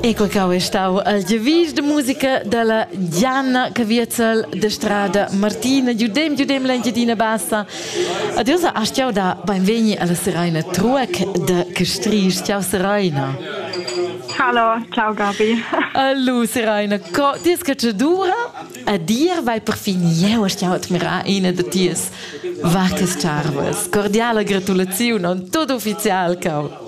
Ecco che è stato il devis de musica della Gianna Caviezel de Strada Martina. Giudem, giudem l'Engiadina Bassa. Adesso hast du da benveni alla Seraina Truec de Castries. Ciao Seraina. Hallo, ciao Gabi. Hallo Seraina, co dis che ci dura? A dir vai perfin jeu hast jau admirar ina de ties vacas charvas. Cordiale gratulazione, tutto ufficial, cau.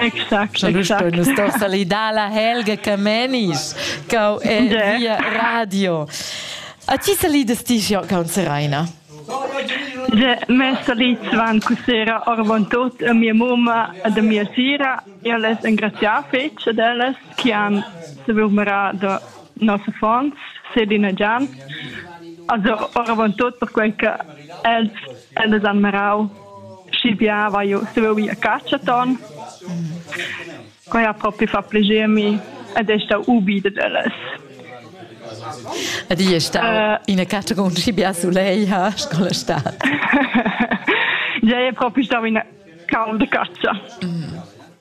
Exact, exact. Sto salidar la Helga Camenisch, cau e via radio. A ti salidas ti jo con Seraina? De me salit van cusera orvon tot a mia mumma ad a mia sira e les engraziar fetg ad ellas che han sevumera da nossa fons Selina Gian also orvon tot per quel che els els han merau Sch'il biava jeu stuiu ir a catscha ton, quei ha propi fa plascher mi ed ei stau ubi dad ellas. Ed igl è stau ina catscha con schi bia sulei ha scola stat. Gei è propi stau ina cau da catscha. Mm.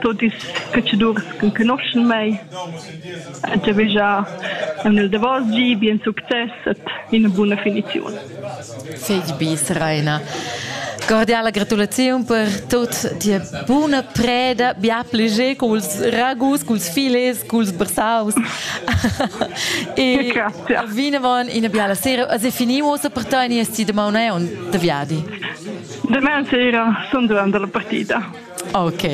Tuot ils catschadurs ch'enconoschan mei han giavüschà aunc il davos gi bien success ed üna buna finiziun. Figl bis, Raina. Cordiala gratulaziun per tot tia buna preda, bia pleger culs ragus, culs filets, culs bersaus. e vinavon ina biala sera. As è finimo uossa per te e nies ti damaun e on de viadi. Demain sera sun durant la partida. Ok.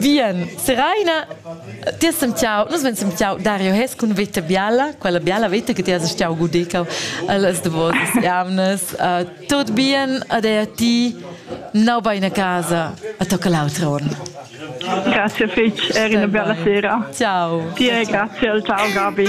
Bien, Seraina, ti has sentiau, nus vein sentiau Dario Hes cun veta biala, quella biala veta che ti has stiau gudicau allas davosas jamnas. Uh, tot bien ad ei a ti, nau bein a casa, a tocca l'autra on. Grazie fitch, eri una bella sera. Ciao. Ti e grazie al tao Gabi.